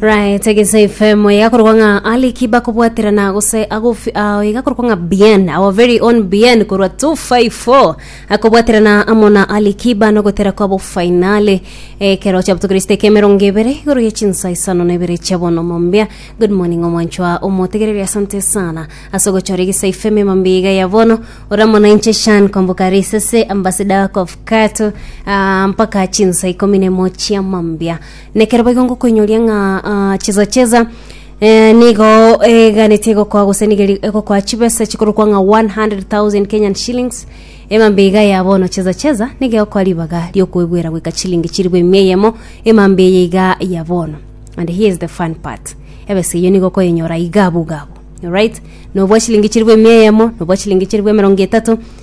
right egese ifemo igakorwa ng'a ali kiba kobwaterana gose agofi ao igakorwa ng'a bien our very own bien korwa 254 akobwaterana amo na ali kiba nogotera kwabo fainale ekero chiabotokiriste ekemerongo ebere igoro ya chinsa isano na ibere chia bono mombia good morning omwanchwa omotegereri asante sana ase ogochora egese ifemo emambia iga ya bono oramo na inche shan komboka risese ambassador of kato ah, mpaka chinsa ikomi nemo chia mambia Nekero boigo ngokoinyoria ng'a ah, chesa chesa eh, nigo eganete egokoa gose nigo eri- egokoa chibesa chikorokwa ng'a 100,000 Kenyan shillings emambe iga ya bono chesa chesa nigo egokoa ribaga riokoebwera goika chilingi chiribu emia eyemo emambe eye iga ya bono and here is the fun part ebesa eyo nigo okoyenyora iga abwo iga abwo alright nobwa chilingi chiribu emia eyemo nobwa chilingi chiribu emerongo etato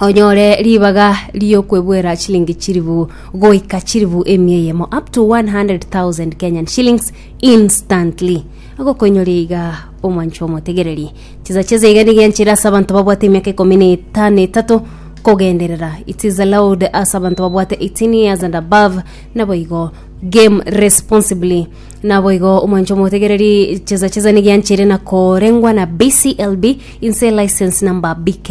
onyore ribaga ri'okwebuera chilingi chilifu goika chilifu emia eyemo up to 100,000 Kenyan shillings instantly agokoinyoria iga omwancho omotegereri chisa chese iga niga enchera ase abanto babwate emiaka ikomi na eta- na etato kogenderera it is allowed ase abanto babwate 18 years and above naboigo game responsibly naboigo omwancho omotegereri chesa chesa niga enchera nakorengwa na BCLB inse license number BK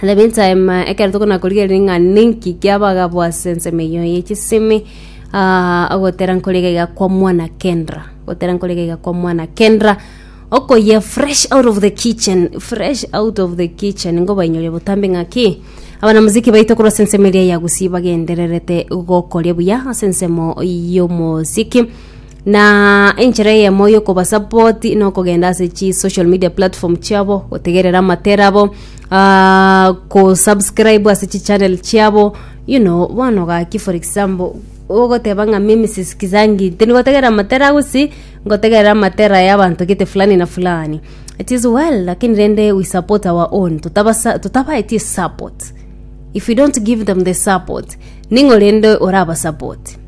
And the meantime, uh, ekero tokona korigereria ng'a ninki kiabagabwa ase ensemo eyo ye chisemi ah, ogotera nkorega iga kwa mwana kendra gotera nkorega iga kwa mwana kendra okoyia fresh out of the kitchen fresh out of the kitchen ngobainyoria botambe ng'aki abana muziki baito korwa ase ensemo eria ya gusii bagendererete gokoria buya ase ensemo y'omosiki Na enchera eyemo y'okobasapoti nokogenda ase chi social media platform chiabo, gotegerera amatera abo, ah, kosubscribe ase chi channel chiabo, you know, bono gaki for example, ogoteba ng'a mimi sisikizangi, tindi gotegerera amatera gose ngotegerera amatera y'abanto gete fulani na fulani. It is well, lakini rende we support our own, totabasa totabaeti esupport. If you don't give them the support, ning'o rende orabasapoti?